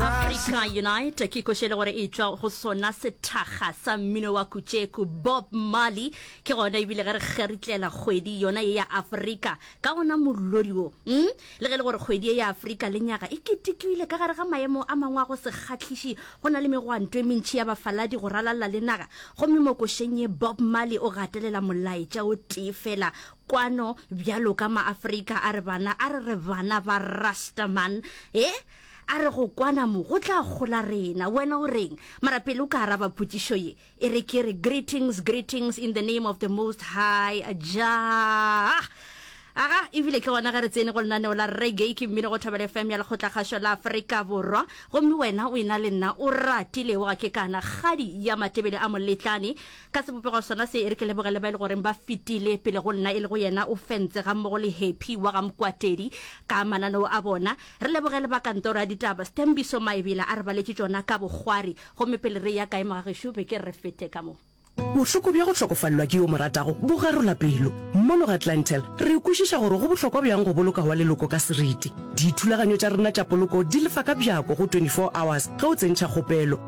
africa unite ke košele gore e tswa go sona sethakga sa mmino wa kutšeku bob marley ke gona ebile ge re kgeritlela kgwedi yona ye ya afrika ka gona mollodi wo mm? le ge le gore kgwedi ye ya afrika le nyaga e ketekiwile ka gare ga maemo a mangwe a go se kgatlhiši go na le megwanto e mentšhi ya bafaladi go ralalla le naga gomme mo košeng ye bob marley o gatelela molaetša o tee fela kwano bjalo ka maAfrika a re bana a re re bana ba rasta man e a re go kwana mo go tla gola rena wena o reng mara pele o ka araba potšišo ye e re ke re greetings greetings in the name of the most high jah aga ebile ke gona ge re tsene go lenaneo la reggae ke mmino go thobela fm ya lekgotlakgašo la aforika borwa gomme wena o ena le nna o ratilego ga ke kana kgadi ya matebele a moletlane Ka sebopego sona se, e re ke lebogele ba e le goreng ba fetile pele go nna, e lego yena o Fentse gammogo le Happy wa ga Mokwatedi ka mananeo a bona. Re leboge le ba kantoro ya ditaba, Sthembiso Maebela a re baletše tšona ka bokgwari. Gomme pele re eya kae mogagešo, be ke re re fete ka mo. Bohloko bja go hlokofalelwa ke yo o mo ratago bo garola pelo. Mono ga Clientele, re kwešiša gore go bohlokwa bjang go boloka wa leloko ka seriti. Dithulaganyo tša rena tša poloko di lefa ka bjako go 24 hours ge o tsentšha kgopelo.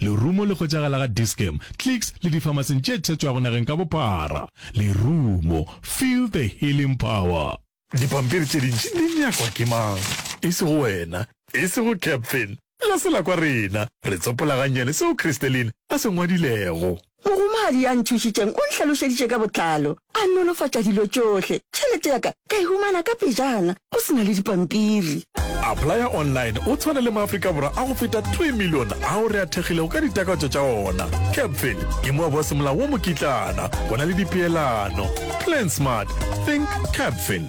Lerumo le hwetšagala ga Dis-Chem, Clicks le difamasing tše thetšwago nageng ka bophara. Lerumo, feel the healing power. Dipampiri tše dintši di nyakwa ke mang? E sego wena. E sego Capfin. La se la kwa rena. Re tsopola gannyane seo Christeline a se ngwadilego. Mohumagadi ya nthušitšeng o nhlalošeditše ka botlalo, a nolofatša dilo tšohle. Tšhelete ya ka ka e humana ka pejana, go se na le dipampiri. Applya Online o tshwana le Maafrika Borwa a go feta two million ao re a thekgilego ka ditakatso tša ona. Capfin ke moabo wa semolao wo mokitlana, go na le dipeelano. Plan Smart, Think Capfin.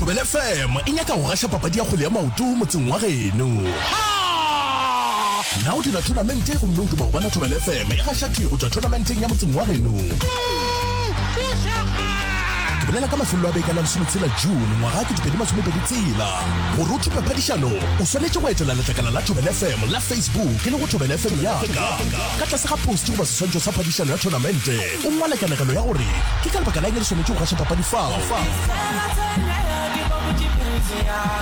Thobela FM e nyaka go gaša papadi ya kgwele ya maoto motseng wa geno. Na o dira thonamente gomme o duma go bona Thobela FM e gaša thwi go tšwa thonamenteng ya motseng wa geno? Ke bolela ka mafelelo a beke la lesometshela June ngwaga ke dipedi masomepedi tsela. Gore o thupe phadišano, o swanetše go etela letlakala la Thobela FM la Facebook e lego Thobela FM Yaka. Ka tlase ga post goba seswantšho sa phadišano ya thonamente, O ngwala kanegelo ya gore ke ka lebaka la eng re swanetše go gaša papadi fao.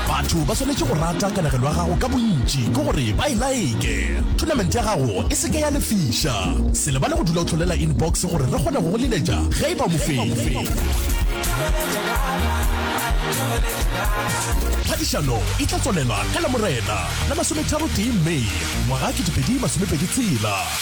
Batho ba swanetše go rata kanegelo ya gago ka bontši ke gore ba e like. Thonamente ya gago e se ke ya lefiša. Se lebale go dula o hlolela inbox gore re kgone go go leletša ge e ba mofenyi. Phadišano e tla tswalela ka Lamorena la masometharotee May ngwaga 2026.